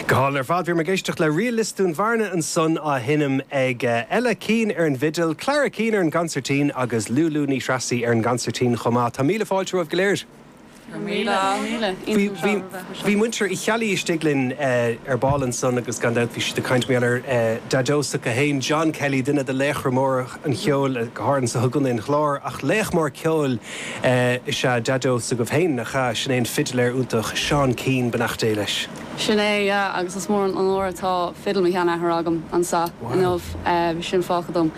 Go hálainn ar fad. Bhí mé ag éisteacht le ríl Lios Dún Bhearna ansan á sheinm ag Ella Keane ar an bhfidil, Clara Keane ar an gconsairtín agus Lúlú Ní Threasaigh ar an gconsairtín chomh maith. Tá míle fáilte romhaibh go léir. Go míle, míle. Iontach an seó a bheith anseo. Bhí muintir Uí Cheallaigh istigh linn ar ball ansan agus gan dabht bhí siad ag caint mar gheall ar Daideo s'acu féin, John Kelly, duine de laochra móra an cheoil go háirithe anso i gContae an Chláir ach laoch mór ceoil is ea Daideo s'agaibh féin, nach ea? Sin é an fidléir iontach Seán Keane, beannacht Dé leis. Sin é, yeah, agus is mór an onóir atá fidil mo sheanathar agam anseo inniu, bhí sin fágtha dom.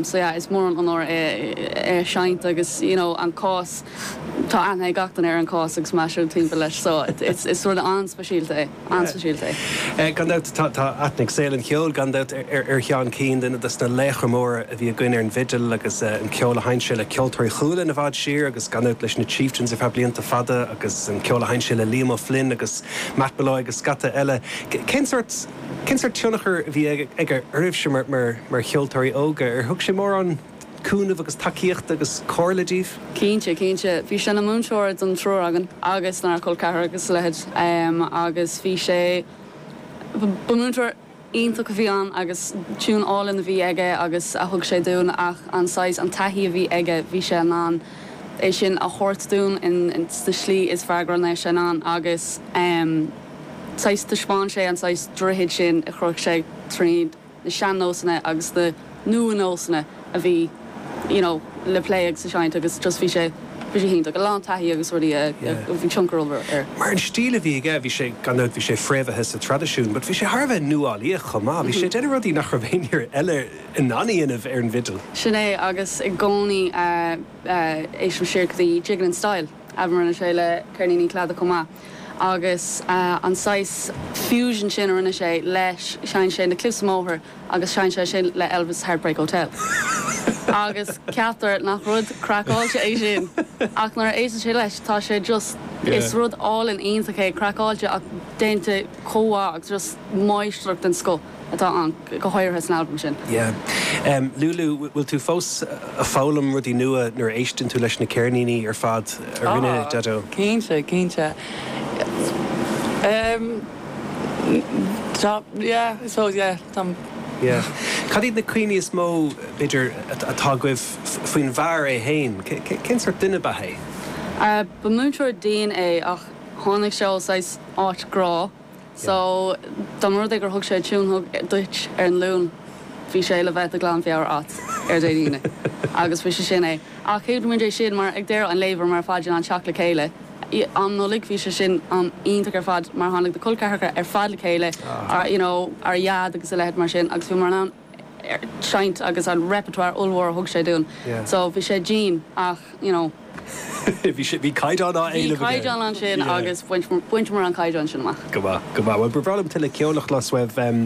So yeah, is mór an onóir é é a sheinnt agus you know an cás, tá aithne ag gach duine ar an chás agus mé ag siúl timpeall leis so it's is rud an-speisialta é. An-speisialta. Gan dabht tá aithne ag saol an cheoil gan dabht ar Sheán Keane, duine dos na laochra móra a bhí againn ar an bhfidil agus an ceol a sheinn sé le Ceoltóirí Chualann i bhfad siar agus gan dabht leis na Chieftains ar feadh blianta fada agus an ceol a sheinn sé le Liam O'Flynn agus Matt Molloy agus scata eile. Cén sórt, cén sórt tionchar a bhí aige oraibhse mar cheoltóirí óga? Ar thug sé mórán. cúnaimh agus tacaíochta agus comhairle daoibh? Cinnte, cinnte. Bhí sé ina múinteoir don triúr againn agus dár gcol ceathrar agus a leithéid agus bhí sé, ba múinteoir iontach a bhí ann agus tiún álainn a bhí aige agus a thug sé dúinn ach an saghas, an taithí a bhí aige, bhí sé in ann é sin a thabhairt dúinn in, sa slí is fearr go raibh sé in ann agus saghas, thaispeáin sé an saghas droichid sin a chruthaigh sé tríd. na sean-nósanna agus na nua-nósanna a bhí you know le plé agus a seinnt agus just bhí sé bhí sé go hiontach, a lán taithí agus rudaí a bhí tionchar ollmhór air. Mar an stíl a bhí aige, bhí sé, gan dabht bhí sé fréamhaithe sa traidisiún but bhí sé thar a bheith nuálaíoch chomh maith, bhí sé ag déanamh rudaí nach raibh aon fhear eile in ann a dhéanamh ar an bhfidil. Sin é agus i gcónaí ag éisteacht siar go dtí Jig It in Style, albam a rinne sé le ceirníní Cladaigh chomh maith. agus an saghas fusion sin a rinne sé leis, sheinn sé na Cliffs of Moher agus sheinn sé sin le Elvis' Heartbreak Hotel agus ceaptar nach rud craiceáilte é sin ach nuair a éisteann sé leis tá sé just, is rud álainn iontach é, craiceáilte ach déanta chomh maith agus just máistreacht den scoth. atá ann, go háirithe san albam sin. Yeah. Lulu, bhfuil tú fós ag foghlaim rudaí nua nuair a éisteann tú leis na ceirníní ar fad a rinne Daideo? Ah, cinnte, cinnte. Em, tá, yeah, I suppose, yeah, tá. Yeah. Cad iad na cuimhní is mó, b'fhéidir, atá agaibh faoin bhfear é féin? Cén sórt duine ab ea é? Ah, ba múinteoir dian é ach tháinig sé ó saghas áit grá So, dá mba rud é gur thug sé tiúin duit ar an Luan, bhí sé le bheith de ghlanmheabhair a'at ar Dé hAoine. Agus bhí sé sin é. Ach thuig muid é sin mar, ag deireadh an lae, bhí mar phaidir an teacht le chéile. I, am Nollag, bhí sé sin an- iontach ar fad mar tháinig na col ceathracha ar fad le chéile, you know, ár ndeaid agus a leithéid mar sin agus bhí mar an am, seinnt agus an repertoire ollmhór a thug sé dúinn. So bhí sé dian ach you know. bhí sé, bhí caighdeán á éileamh aige. Bhí caighdeán ansin agus bhainteamar an caighdeán sin amach. Go maith, go maith. Bhuel ba bhreá liom tuilleadh ceoil a chlos uaibh.